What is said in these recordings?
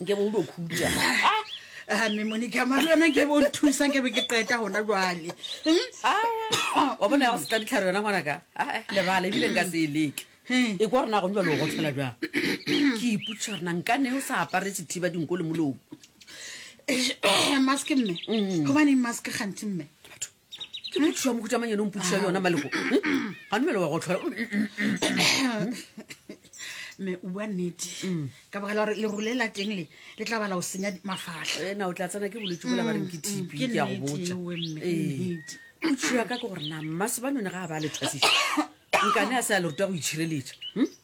nke bo ulo khutša Ah, mme monica mare yona ke bo nthusa ke be ke qeta gona jwale Hmm? Ah, wa bona ya go seka ditlhare yona ngwanaka Ah, eh, lebala ebile nka se e leke Hmm. e kwa rena go njalo go tshela jang ke iputsa rena nka ne o sa aparetse thiba dinko le molomo Eish, mask mme Mm. gobaneng mask gantsi mme batho ke mothuša wa mohutamang yone o mpotuša le yona malego Hmm? ga numele wa go tlhola mme o bua nnete ka baka la gore lerolo le la teng le le tla bala o senya di- mafatlha ena o tla tsena ke bolwetse bola ba reng ke tb ke ke ya go nnete botsa ewe mme, Ee. nnete. potšiša ka ke gore na mmasebanyone ga a ba a le thwasiša nkane a se a le ruta go itšhireletša Hmm?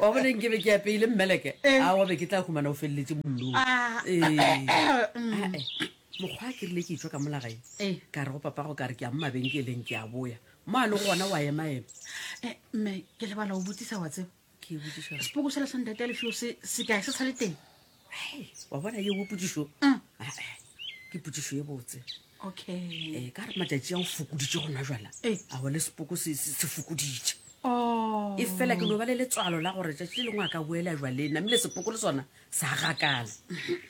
Wa bona nke be ke apeile mmeleke eh. a wa be ke tla humana o feleletše mollong ah. eh. eh. mokgwa a ke rile ke etswa ka molagae eh. ka re go papago ka re ke ya mo mabenkeleng ke a boya mo a le go gona wa emaema eh, mme ke lebala o botsisa wa tseba sepoko sela sa ntate a lefio se kae se sa le teng Hey, wa bona yeo potsišo Mm. Ah, eh, ke potsišo ye botse okay um ka re matšatši a o fokoditše gona jala Eh. a go le sepoko se se- se fokoditše oh e fela ke no ba le letswalo la gore tšatši le lengwe a ka boela jwaleng namile sepoko le sona sa gakala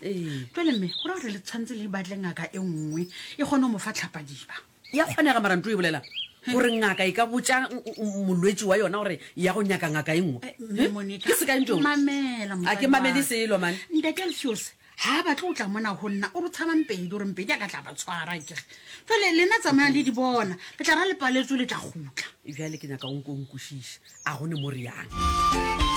ee jale mme go ra gore le tshwanetse le batle ngaka e nngwe e kgone go mo fa tlhapadiba E a kgonega, mara nto e bolela gore ngaka e ka botša molwetši wa yona gore ya go nyaka ngaka e nngwe. Ke sekae nto? A ke mamele selo, man. Ntate Alfiose, ha a batle o tla mona ho nna, o re tshaba mpedi, o re mpedi a ka tla ba tshwara, ke re. Jwale, lena tsamaya le di bona, le tla ra le paletswe le tla gutla. Bjale ke nyaka o nko o nkwešiša, a go ne mo reyang?